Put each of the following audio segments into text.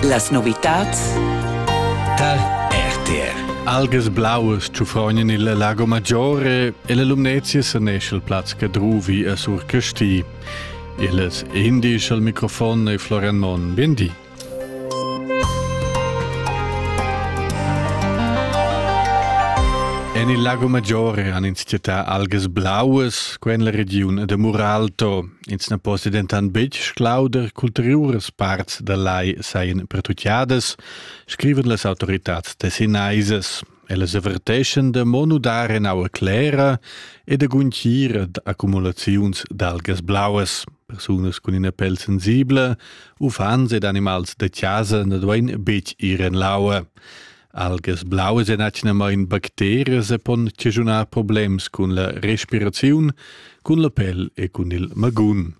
Las novitads Tal RTR Algas blauas tschufrognan il Lago Maggiore e la Lumnezia sanesce il plaz Cadruvi a Sur Casti. Illes indisch al microfon e Florian Mon. Biendi. En il Lago Maggiore han ins città algas blauas, quen la regiun de Muralto, Ins na possi dentant betg sclauder ch'ulteriuras parts dal lai sajan pertutgadas, scrivan las autoritads tessinaisas. Ellas averteschan da mo nudar en aua clera e da guntgir ad accumulaziuns d'algas blauas. Persunas cun ina pel sensibla, uffants ed animals da chasa na duain betg ir en l'aua. Algas blauas èn atgnamain bacterias e pon chaschunar problems cun la respiraziun, cun la pel e cun il magun.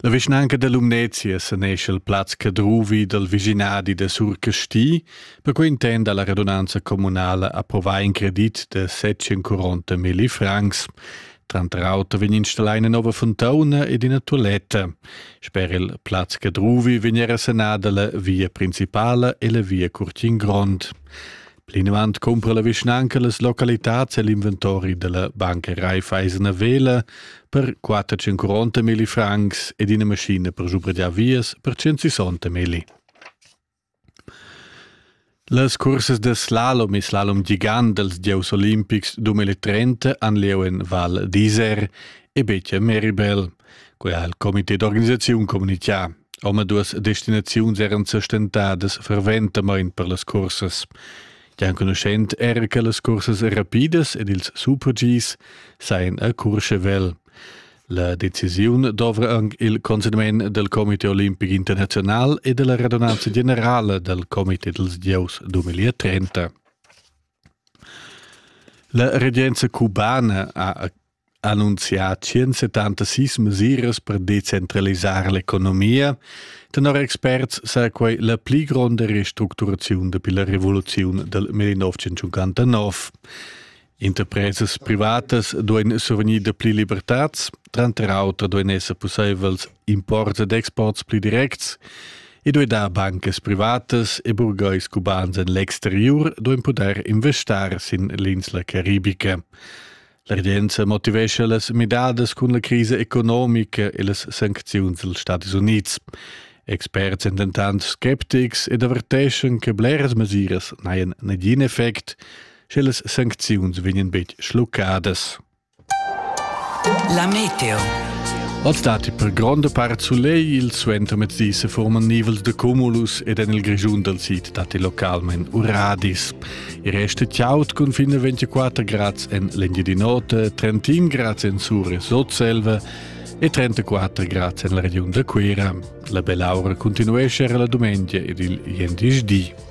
La vischnanca da Lumnezia sanescha il plaz Cadruvi dal vischinadi da Surcasti, perquai intenda la radunanza communala approvar in credit da 740 milli francs. Tranter auter vegn installà ina nova fontauna ed ina tualetta. Sper il plaz Cadruvi vegn era sanada la via principala e la via Curtin Grond. Plinavant cumpra la vischnanca las localitads e l'inventori della banca Raiffeisen Vela per 450 mili francs ed ina maschina per giubrigiar vias per 160 mili. Las cursas da slalom e slalom gigant dals gieus olimpics duemila trenta han lieu en Val d'Isère e betg a Meribel. Quai ha il comité d'organisaziun communitgà. Omaduas destinaziuns eran sa stentadas ferventamain per las cursas. Gia enconuschent era che las cursas rapidas ed ils super-Gs sajan a Curschevel. La decisiun dovra anc il consegnament del Comité Olimpic Internazional e della redunanza generale del Comité dels Dieus 2030. La regenza cubana ha annunziat 176 mesiras per decentralisare l'economia. Tenor experts sa quei la pli gronda restructuraziun dapi la revoluziun del 1959. Interpresas privatas duein survegnir dapli libertads, tranter auter duein esser pusseivels imports ed exports pli directs e duei dar bancas privatas e burgheis cubans en l'exteriur duein pudair investar sin l'insla caribica. La regenza motivescha las midadas cun la crisa economica e las sancziuns dals Stati Unids. Experts sind dentant skeptics ed averteschan che bleras mesiras n'hajan negin effect, Sche las sancziuns vegnan betg schluccadas. La meteo. Oz datti per gronda part sulegl, il suentermezdi se forman nivels de cumulus ed en il Grischun dal sid datti localment uradis. Il resto chaud cun fin a 24 grads en l'Engiadin'Ota, 31 grads en Sur e Sotselva e 34 grads en la regiun da Cuira. La belaura continuesce la domenica ed il jendisdi.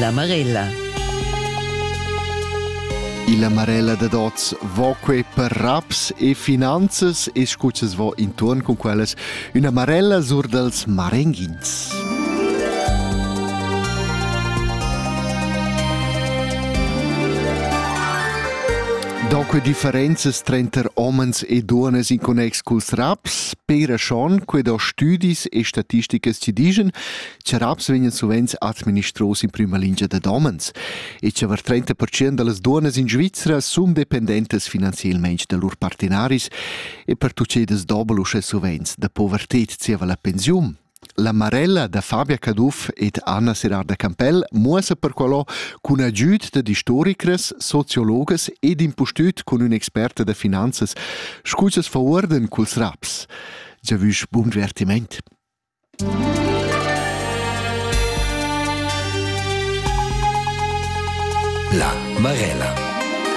La Marella. Illa Marella dad oz vo que per raps e finanzas e scuzzas vo intuorn cun quellas üna marella sur dals marenghins. Da que differenzas trenter homens e duonas in connex culs raps, pera schon, que do stüdis e statisticas ci digen Tscheraps vegnan suvenz administros in prüma lingia dad homens e chavar 30% da las duonnas in Svizra sun dependentas finanzielmaing da lur partenaris e per tucedas dobel uschè suvenz da poverted zieva la pensiun. La Marella da Fabia Caduff ed Anna Serarda Campell muossa perqualò cun agüd da istoricras, sociologas ed impustüt cun ün'experta da finanzas, scu cha's faurdan culs raps. Giavüsch bun divertiment! La Marella.